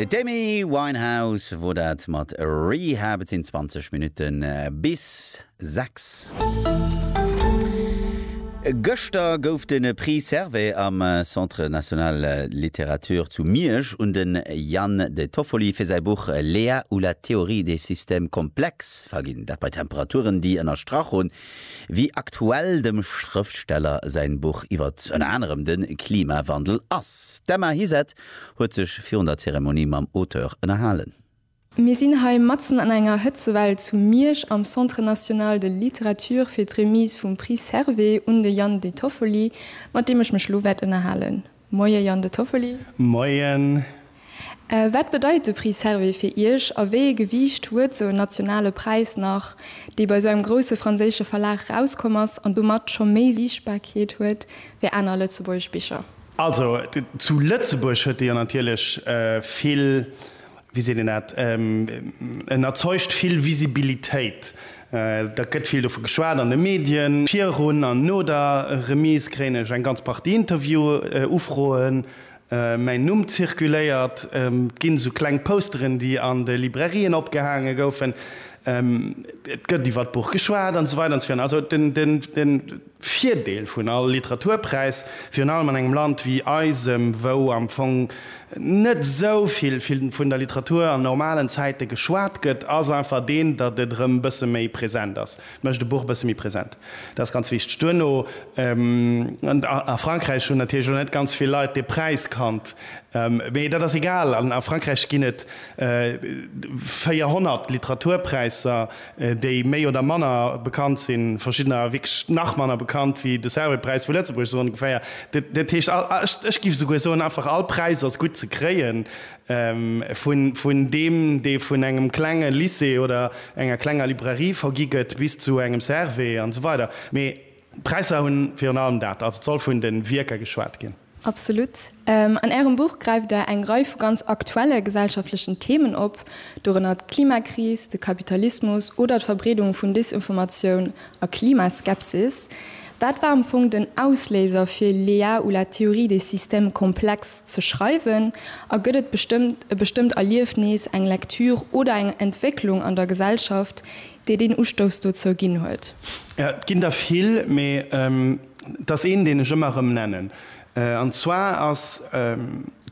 D'Amy Winehouse wor dat mat Rehab. Et sinn 20 Minutten bis 6. Gëschter gouf de Prix Servais am Centre National de Littérature zu Miersch un de Yann De Toffoli fir säi Buch Lea ou la théorie des systèmes complexes verginn. Dat bei Temperaturen, déi ënnerstrach hunn, wéi aktuell dem Schrëftsteller säin Buch iwwert ënner anerem de Klimawandel ass. D'Emma Hiset huet sech virun der Zeremonie mam Auteur ënnerhalen. Mir sinn hei matzen an enger Hëtzewell zu Miersch am Centre National de Littérature fir d'Remise vum Prix Servais un de Yann Detoffoli, mat deem ech mech elo wäert ënnerhalen. Moie Yann de Toffoli. Moien. Wat bedeit de Prix Servais fir Iech a wéi ee Gewiicht huet sou en nationale Präis nach, dee bei sou engem grousse franséische Verlag erauskomm ass an domat scho méi Siichtbarkeet huet wéi aner lëtzebuergesch Bicher? Also zu Lëtzebuerg huet de jo natierlech vill wéi seet een dat, en erzeugt vill Visibilitéit, dat gëtt vill dovu geschwat an de Medien, virun an no der Remise kréien ech eng ganz Partie Interview-Ufroen, mäin Numm zirkuléiert, et ginn esou kleng Posteren, déi an de Librairien opgehaange goufen, et gëtt iwwer d'Buch geschwat an esou weider an esou virun. Also den. Virdeel vun all Literaturpräis, virun allem an engem Land wéi eisem, wou am Fong net esou vill vun der Literatur an normalen Zäite geschwat gëtt, ass einfach deen, datt et erëm e bësse méi present ass. Et mécht e Buch e bësse méi present. Dat ass ganz wichteg. Duerno, a Frankräich hunn natierlech och net ganz vill Leit dee Präis kannt, mee dat ass egal. A Frankräich ginn et 400 Literaturpräisser. déi méi oder manner bekannt sinn, verschiddener wierklech nach manner bekannt wéi de Servais-Präis vu Lëtzebuerg, esou ongeféier. Dat heescht, ech giff esouguer soen, einfach all Präis ass gutt ze kréien, vun deem, dee vun engem klenge Lycée oder enger klenger Librairie vergi gëtt, bis zu engem Servais an esou weider. Mee d'Präisser hu virun allem dat, also et soll vun de Wierker geschwat ginn. Absolut. An Ärem Buch gräift Der eng Rei vu ganz aktuelle gesellschaftlechen Themen op, dorënner d'Klimakris, de Kapitalismus oder d'Verbreedung vun Desinformatioun a Klimaskepsis. Wat war am Fong den Ausléiser fir Lea ou la théorie des systèmes complexes ze schreiwen? A gëtt et e bestëmmt Erliefnis, eng Lektür oder eng Entwécklung an der Gesellschaft, déi deen Ustouss dozou ginn huet? Et ginn der vill, mee. Et ass een, deen ech ëmmer erëm nennen. An zwar ass,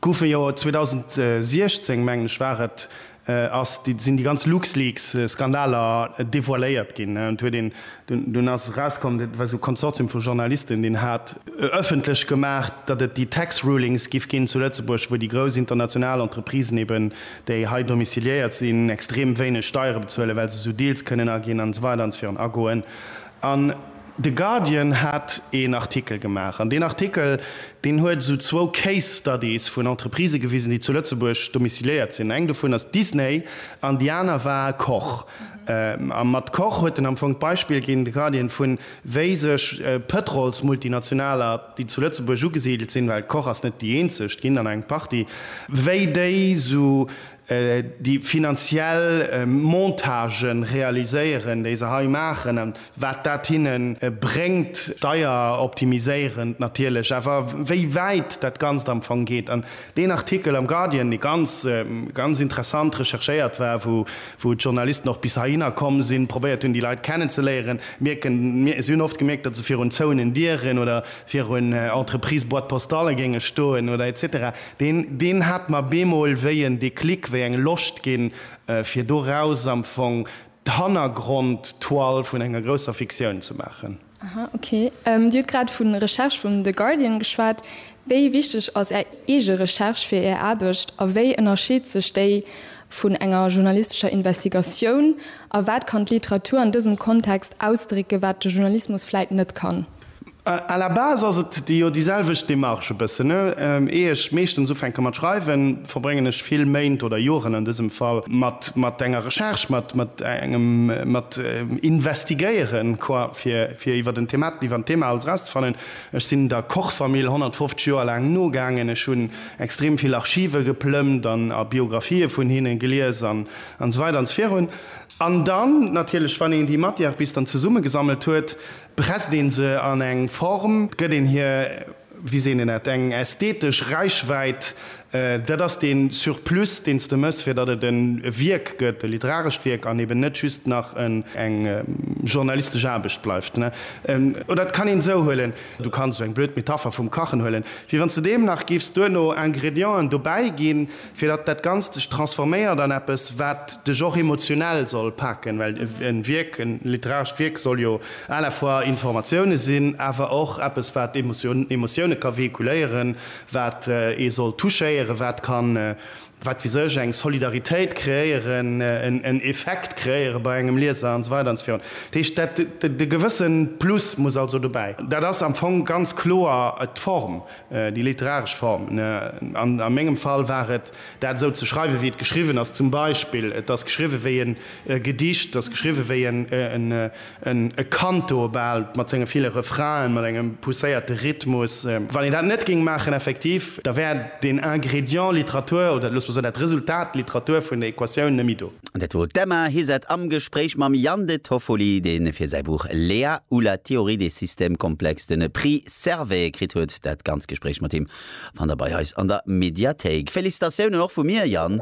gouf e jo 2016, mengen ech war et, ass, sinn déi ganz LuxLeaks-Skandaler devoiléiert ginn. Et huet een, dunn ass erauskomm, dat war esou e Konsortium vu Journalisten, deen hat ëffentlech gemaach, datt et déi Tax Rulings giff ginn zu Lëtzebuerg, wou déi grouss international Entreprisen eben, déi hei domiciliéiert sinn, extrem wéineg Steiere bezuelen, well se esou Deals kënnen aginn an esou weider an esou virun agoen. De Guardian hat een Artikel gemaach, an deen Artikel, deen huet esou zwou Case Studies vun Entreprisë gewisen, déi zu Lëtzebuerg domiciliéiert sinn. Eng dovun ass Disney an déi aner war Koch. A mat Koch huet en am Fong d'Beispill ginn, de Guardian, vu wéi sech Pëtrolsmultinationaler, déi zu Lëtzebuerg ugesidelt sinn, well Koch ass net déi eenzeg, et ginn der nach eng Partie, wéi déi esou déi finanziell Montage realiséieren, déi se hei maachen a wat dat hinne bréngt, steieroptimiséierend natierlech, awer wéi wäit dat Ganzt am Fong geet. An deen Artikel am Guardian, dee ganz, ganz interessant recherchéiert war, wou d'Journalisten och bis heihinner komm sinn, probéiert hunn, déi Leit kennenzeléieren, mierken, si hunn oft gemierkt, datt se virun zouenen Dieren oder virun Entreprise-Boîte-postale géinge stoen oder et cetera. Deen, deen hat mer bemol wéi en Déclic, wéi eng Loscht ginn, fir doraus am Fong d'Hannergrond-Toile vun enger grousser Fiktioun ze maachen. Aha, ok. Dir hutt grad vu Recherche vum The Guardian geschwat. Wéi wichteg ass Är eege Recherche fir Är Aarbecht a wéi ënnerscheet sech déi vun enger journalistescher Investigatioun? A wat kann d'Literatur an dësem Kontext ausdrécken, wat de Journalismus vläit net kann? À la base ass et jo déi selwecht Démarche e bëssen. Ier ech meeschtens ufänke mat schreiwen, verbréngen ech vill Méint oder Joren an dësem Fall mat enger Recherche, mat engem, mat Investigéieren, quoi, fir iwwer en Thema, iwwer en Thema alles erauszefannen. Ech sinn der Koch-Famill 150 Joer laang nogaangen. Ech hunn extrem vill Archive geplëmmt an a Biographië vun hinne gelies an esou weider an esou virun. An dann natierlech, wann een déi Matière bis dann zesummegesammelt huet, Presst een se an eng Form, gëtt een hir, wéi seet een dat, eng ästhetesch Räichwäit. Dat ass dee Surplus, deen s de mëss, fir datt et e Wierk gëtt, e literarescht Wierk, an eben net just nach eng journalistesch Aarbecht bleift. Oder et kann een esou huelen, du kanns esou eng blöd Metapher vum Kachen huelen, wéi wann s de deem nach giffs duerno Ingredienten dobäiginn, fir datt dat Ganzt sech transforméiert an eppes, wat dech och emotionell soll paken, well e Wierk, e literarescht Wierk soll jo à la fois Informatioune sinn, awer och eppes, wat Emotioune ka véhiculéieren, wat ee soll touchéieren, wat ka, wat weess ech, eng Solidaritéit kreéieren, en Effekt kreéiere bei engem Lieser an esou weider an esou virun. Dat heescht, e gewësse Plus muss also dobäi. Dat ass am Fong ganz kloer d'Form, Déi literaresch Form, a mengem Fall war et, dat esou ze schreiwen, wéi et geschriwwen ass, zum Beispill, et ass geschriwwen wéi en Gedicht, et ass geschriwwen wéi en e Canto bal, mat senge ville Refrainen, mat engem pousséierte Rhythmus. Wann een dat net géing maachen, effektiv, da wär deen Ingrédient Literatur, oder loosse mer soen, dat Resultat Literatur vun der Equatioun net méi do. Dat wor d'Emma Hizard am Gespréich mam Yann de Toffoli, dee fir säi Buch Léa ou la théorie des systèmes complexes den Prix zerwéie kritt huet. Dat ganz Gespréich mat him fannt der bei eis an der Mediathéik. Félicitatiounen och vu mir, Yann!